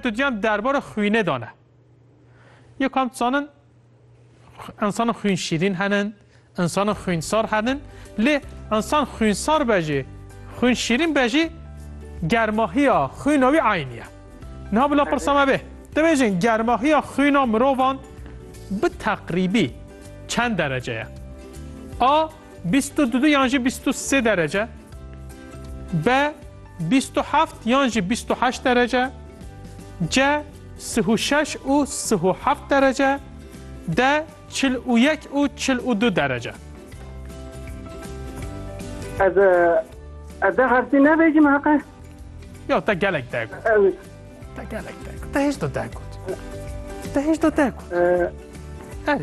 dudyan derbara xwînê dane. Yê kam dizanin insana xwîn şîrîn henin, insana xwînsar henin, lê insan xwînsar be jî, xwîn şîrîn be jî germahiya xwîna wî eyn ye. Niha bila pirsa me bê. Dibêjin germahiya xwîna mirovan bi teqrîbî çend derece ye? A Bîst û du yan jî bîst û sê derece. B. Bîst û heft yan jî bîst û heşt derece. C. Sih û şeş û sih û heft derece. D. Çil û yek û çil û du derece. Ez ez de harfî nevêjim heqe. Yo te gelek dek. Te gelek dek. Te hiç do dek. Te hiç do dek. Erê.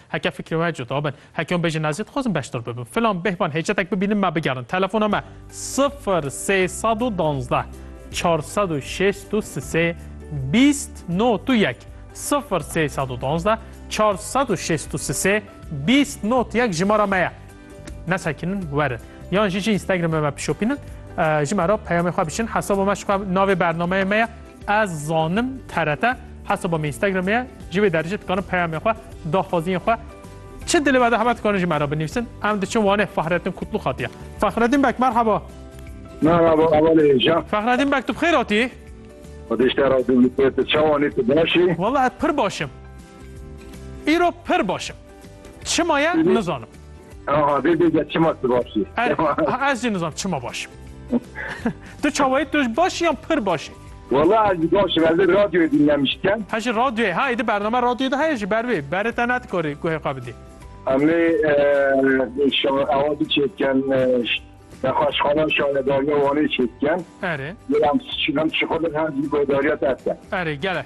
Heke fikrê we cuda bin, heke hûn bêjin ez jî dixwazim beşdar bibim. Filan bêhvan hêcetek bibînim me bigerin. Telefona me sifir sê sed û duwazdeh çar sed û şêst û sisê bîst not û yek sifir sê sed û duwazdeh çar sed û şêst û sisê bîst not yek jimara me ye. Nesekinin werin. Yan jî jî Instagramê me pişopînin. Ji me re peyamê xwe biçin. Hesaba me ji xwe navê bernameyê me ye. Ez zanim TRT. Hesaba me Instagramê ye. Ji wê derê jî dikarin peyamê xwe, daxwaziyên xwe Çi dilê me de hebe dikarin ji me re binivîsin. Em diçin Wanê Fahrettin Kutlû xatiye. Fahrettin Bek merhaba. Merhaba Amalê Hêja. Fahrettin Bek tu bixêr hatî? Xwedişte ra tu bixêr tu çawanî tu başî? Wala ez pir başim. Îro pir başim. Çima ye nizanim. Aha vê bêje çima tu baş î. Er, ez jî nizanim çima baş im. tu çawayê tu ji baş î yan pir baş î? Wala ez jî baş im, ez ê radyoyê dînlemişî. He jî radyoyê, ha êdî bername radyoyê de heye jî ber vê, berê te nedikarî guhê xwe bidî. Em ê ewa biçê bikin nexweşxana şaredariya Wanê çê bikin. Erê. Em em şixulin hem jî guhêdariya te bikin. Erê gele.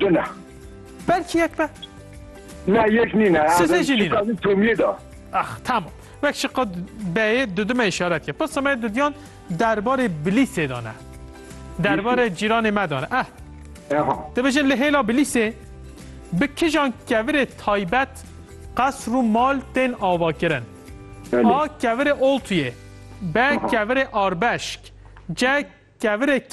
Tu ne. Belkî yek be. Ne yek nîne. Sifê jî nîne. Şiqadî Tomiyê de. Ax tamam. Wek şiqad beyê dudime îşaret ye. Pirsa me dudiyan derbarê Bilîsê de ne. Derbarê cîranê me de ne. Eh. Eha. Dibêjin li hêla Bilîsê bi kijan kevirê taybet qesr û mal tên avakirin. A kevirê oltuyê. B kevirê arbeşk. C kevirê